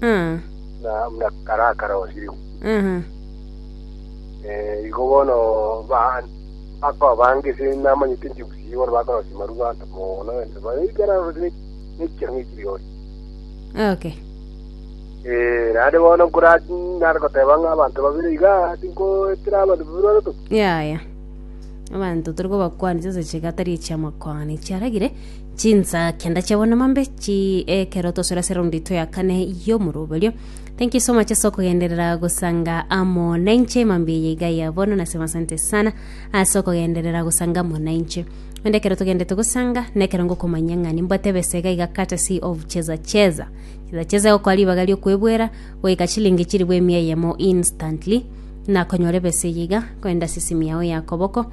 buna kare akarosirigwe. Igo bono bakoba bange ase namanyete inche bosio bono bakorosia marua ase mono egento bare ekero arosire nekiya ng'a ekio rirorio. Okay. Eh, naende bono nkora nare goteba ng'a abanto babere iga tinkoetera abanto babere baroto. Yaya. Abanto tore kobakwanisa ase chiga tari echiamakwana echiaragire Chinsa kenda chabo namambe chi ekero tosora se round yetu ya kane y'omoroberio thank you so much ase okogenderera gosanga amo nainche mambi eye iga ya bono nasema asante sana ase okogenderera gosanga amo nainche onde ekero togendete gosanga na ekero ngokomanya ng'a nimbwate ebesa iga iga courtesy of cheza cheza cheza cheza egokoa ribaga riokwebwera goika chilingi chiri bwa emia eyemo instantly nakonyora ebesa eye iga koenda sisimi yao ya koboko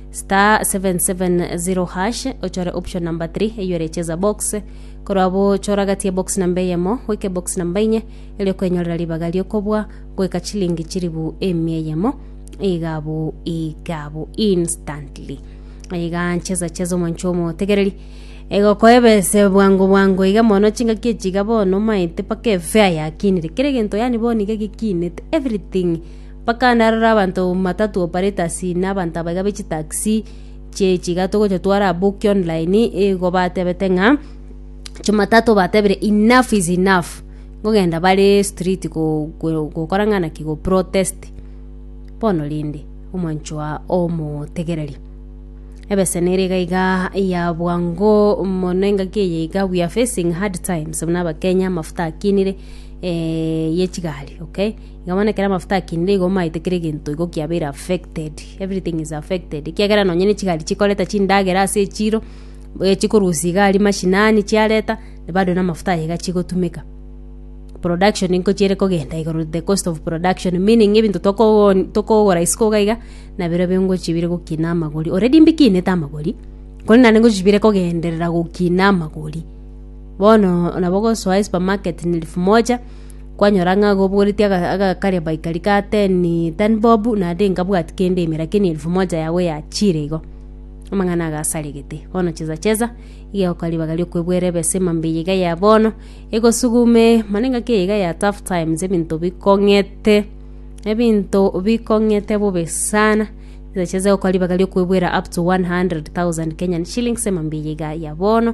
star 770 hash ochore option number 3 eyo ere cheza box korwa abo chora gati ya box namba eyemo goika box namba inye erio kwenyorera ribaga riokobwa goika chilingi chiribu emia eyemo igabu igabu instantly iga ncheza cheza omoncho omotegereri egokoebese bwango bwango iga mono chingaki echi iga bono maete paka efea yakinire kere gento yani bono iga gekinete everything Bakana aroro abanto bamatatu operators na abanto abaiga be chitaxi chie chigato gocha twara aboki online igo batebete ng'a jumatatu batebire enough is enough kogenda bare street go go gokora ng'a naki go protest bono rende omwancho oa omotegereri ebesa nere iga iga ya bwango mono engaki eye iga we are facing hard times buna abakenya amafuta akinire ye chigari okay. Iga bono ekero amafuta akinde igo omaete kera egento igo kiabeire affected, everything is affected, ekiagera nonye ne chigari chikoreta chindagera ase echiro, eh chikorusia iga aria mashinani chiareta, bado na amafuta aye iga chigotumeka. Production nko chiere kogenda igoro, the cost of production, meaning ebinto tokoo tokogora isiko iga iga, nabirobio nabirobio ngochia bire gokina amagori, already mbikinete amagori, kore naende ngochia bire kogenderera gokina amagori. Bono nabo ogosoa esupermarket na elfu moja. Kwanyora ng'a gobogoretie agakare baikari ka teni tani bob naende nkabwati kende emera keni elfu moja yago ya chire igo. Amang'ana agasaregete. Bono chesa chesa igegoka ribaga riokoebuera ebesa emambia iga ya bono egosugume mana engaki eye iga ya tough times ebinto bikong'ete ebinto bikong'ete bobe sana chesa chesa egokora ribaga riokoebuera up to 100,000 Kenyan shillings emambia eye iga ya bono.